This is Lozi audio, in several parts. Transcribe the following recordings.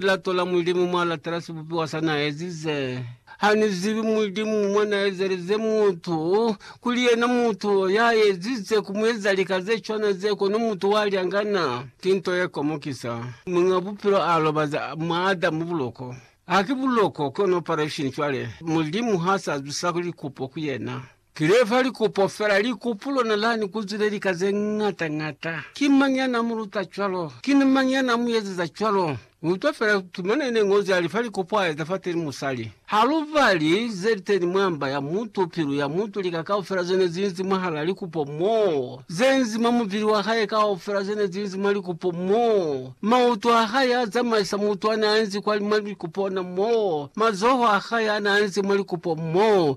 Lilato la Mulimu mwa latela sibupiwa sa na ezize. Ha ni zibi Mulimu mwa na ezelize mutu, kuli yena mutu ya ezize ku mu eza lika ze cwana ze, kono mutu wa lyangana. Ki nto ye komokisa. Muñ'a Bupilo a lobaza mwa Adamu buloko. Haki buloko, kono operation cwale. Mulimu ha sa zwisa likupo ku yena. Ki lefa likupo fela, likupu lona lani ku zwile lika ze ñata ñata. Ki mañi ya na mu luta cwalo? Ki ni mañi ya na mu eziza cwalo? Ni utwa fela tumana ine Ñozi ya lifa likupu a eza fateni musali. Ha lu bali ze liteni mwa mba ya mutu, pilu ya mutu, lika kaufela zene zinzi mwahala likupo moo, ze nzi mwa mubili wa hae kaufela zene zinzi mwa likupo moo, mautu a hae a zamaisa mutu a na enzi kwa mwa likupo ona moo, mazoho a hae a na enzi mwa likupo moo,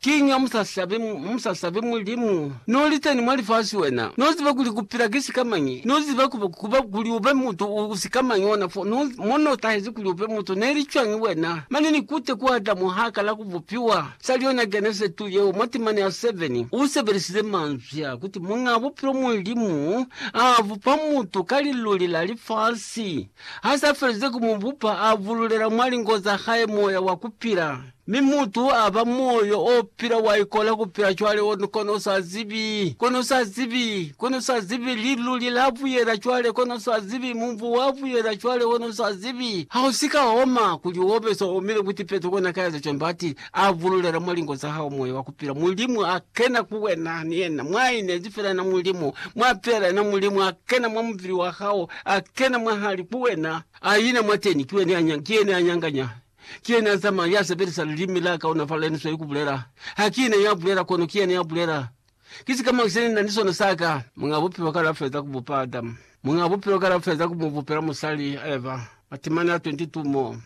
Kiñi ha musasabi, musasabi Mulimu? Noliteni mwa lifasi wena, noziba kuli kupila ki sikamañi, noziba kuba, kuba kuli ube mutu u, u sikamañi ona fo, no, mo notahezi kuli ube mutu. Neli cwañi wena? Mane nikute ku Adamu ha kala kubupiwa, sali yona Genese 2 yeo, mwa timana ya 7, u sebelisize manzwi a kuti Muñaa Bupilo Mulimu a bupa mutu ka liluli la lifasi. Ha sa felize ku mu bupa, a bululela mwa lingo za hae moya wa kupila. Mi mutu aba moyo o pila wa ikola ku pila cwale o kono o sa zibi, kono sa zibi, kono sa zibi, liluli la buyela cwale kono sa zibi, mubu wa buyela cwale kono sa zibi. Ha u si ka oma, kuli o be so omile ku tipeto kona ka eza cwani bati, a bululela mwa lingo za hao moyo wa ku pila, Mulimu a kena ku wena, ni yena mwa inezi fela na Mulimu, mwa pela na Mulimu, a kena mwa mubili wa hao, a kena mwahali ku wena, a ina mwateni, ki yene a nyanganya. Ki yena ya zamaya, ya sebelisa lilimi la kaonafala, yena sweli ku bulela. Ha ki ne ya bulela, kono ki yena ya bulela. Ki sikamañi se ni na ni sona sa ka? Muñ'a Bupilo kale a feza ku bupa Adamu. Muñ'a Bupilo kale a feza ku mu bupela musali, Eva. Matimani a 22 mo.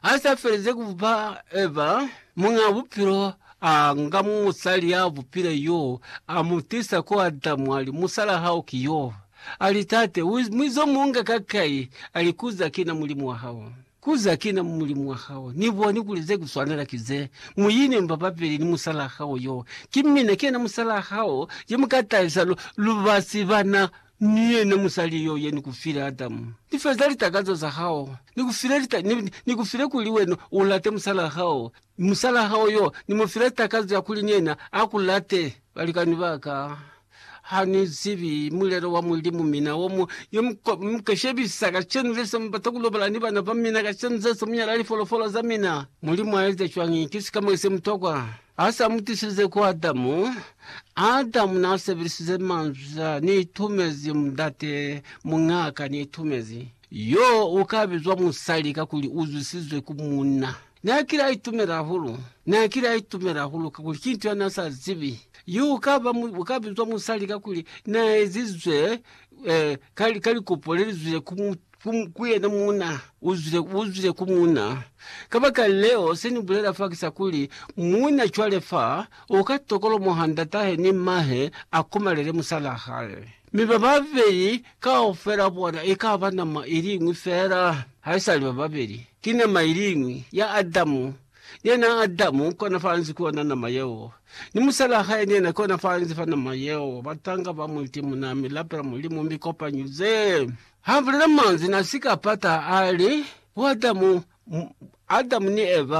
Ha s'a felize ku bupa Eva, Muñ'a Bupilo a nga musali ya bupile yo, a mu tisa ku Adamu, a li, Musal'a hao ki yo. A li, Tate, u mwizo mu nga ka kai? A li, Kuza ki na Mulimu wa hao. Ku za kina mu mulimu wa hao, ni boni kuli ze ku swanela ki ze, Mu ine mba papili ni musalaa hao yo. Ki mina, ki yena musalaa hao, ye mu ka tahisa lu, lu ba si bana ni yena musali yo, ye ni ku file, Adamu. Ni feza litakazo za hao. Ni ku file lita, ni, ni ku file kuli wena u late musalaa hao, Mi musalaa hao yo, ni mu file takazo ya kuli ni yena a ku late. Balikani ba ka, ha ni zibi mulelo wa Mulimu, mina wo mu yo mu ka, mu ka shebisa kacenu le se mu bata ku lobala ni bana ba mina kacenu ze se mu nyala lifolofolo za mina. Mulimu a eza cwañi? Ki sika mo se mutokwa. Ha sa mu tisilize ku Adamu, Adamu na sebelisize manzwi a, Ni itumezi mundate, muñaa ka ni itumezi. Yo u ka bizwa musali kakuli u zwisizwe ku munna. N'a kile a itumela hahulu. N'a kile a itumela hahulu kakuli ki nto ya n'a sa zibi. Yo u ka ba, u ka bizwa musali kakuli n'a ezizwe eh, ka, ka likopo le li zwile ku, ku, ku yena muuna. U zwile, u zwile ku muuna. Kabakaleo, se ni bulela fa ki sa kuli, muuna cwale fa, u ka tokolomoha ndat'ahe ni m'mahe a komalele musal'a hae. Mi bababeli kaufela bona ikaba nama iliñwi feela, haisali bababeli. Ki nama iliñwi, ya Adamu. Ni yena Adamu kona faanzi ku yona nama yeo. Ni musalaa hae ni yena kona faanzi fa nama yeo. Batanga ba mu iti munaa mi lapela Mulimu mi kopanyuze. Ha bulela manzwi na sika pata, ali, Bo Adamu, Adamu ni Eva,